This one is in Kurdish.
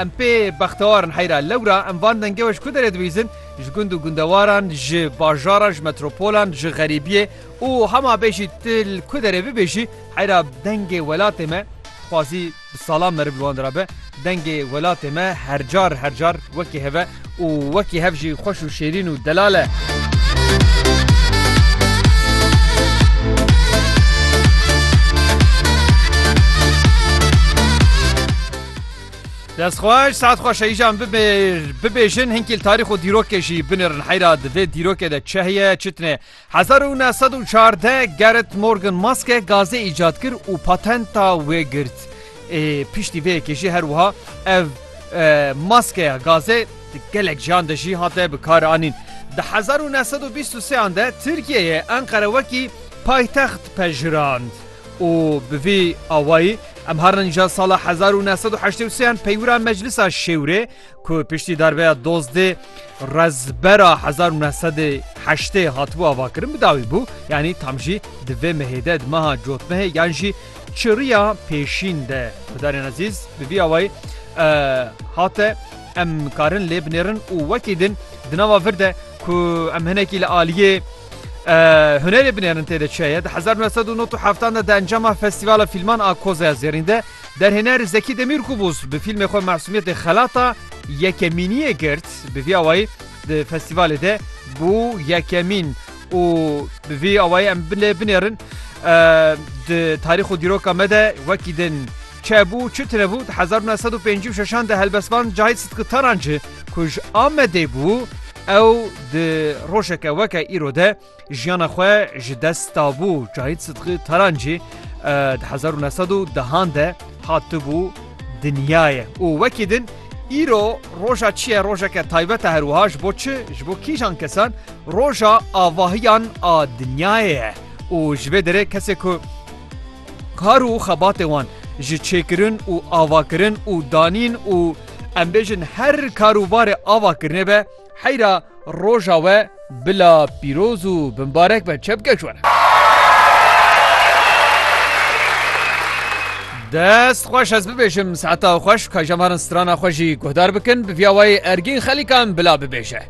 Em pê bextewar in heyra lewra em van dengê we ji ku derê dibîzin, ji gund û gundewaran, ji bajaran, ji metropolan, ji xerîbiyê û hema bê jî tu li ku derê bibêjî heyra dengê welatê me dixwazî bi salan meriv li wan de be, dengê welatê me hercar hercar wekî hev e û wekî hev jî xweş û şêrîn û delal e. Dest xweş saet xweş heyjan bibêjin hinkîl tarîx û dîrokê jî binirin heyra di vê dîrokê de çi heye çitine 1914 Gerrit Morgan maske gazê îcat kir û patenta wê girt ê piştî vê yekê jî her wiha ev maskeya gazê di gelek jiyan de jî hate bi kar anîn di 1923 de Tirkiyeyê Enqere wekî paytext pejirand. û bi vî awayî em har nîja sala hezar û neh sed û heştê û sê yên peywira Meclisa Şêwrê ku piştî darbeya Dozdê Rezbera hezar û neh sedê heştê hatibû avakirin bi dawî bû yanî tam jî di vê mehê de di meha cotmehê yan jî çiriya pêşîn de Hudarên Ezîz bi vî awayî hate em karin lê binêrin û wekî din di nava vir de ku em hinekî li aliyê Hunerê binêrin tê de çi heye? Di hezar nû sed û nod û heftan de di encama Festîvala Fîlman a Koza ya Zêrîn de derhêner Zekî Demîrkubûz bi fîlmê xwe Masûmiyetê Xelata yekemîniyê girt. Bi vî awayî di festîvalê de bû yekemîn û bi vî awayî em binê binêrin di tarîx û dîroka me de wekî din Çe bû, çi tire bû, di hezar û neh sed û pêncî û şeşan de helbestvan Cahit Sıtkı Tarancı ku ji Amedê bû, ew di rojeke weke îro de jiyana xwe ji dest dabû. Cahit Sıtkı Tarancı di hezar û neh sed û dehan de hatibû dinyayê û wekî din îro roja çi ye rojeke taybet e her wiha ji bo çi ji bo kîjan kesan roja avahiyan a dinyayê ye û ji vê derê kesê ku Kar û xebatê wan ji çêkirin û avakirin û danîn û em bêjin her karûbarê avakirinê be heyra roja we bila pîroz û bimbarek be çepkeş were. Dest xweş ez bibêjim saeta xweş ka jemarin strana xwe jî guhdar bikin bi vîya wayê ergîn xelîkan bila bibêje.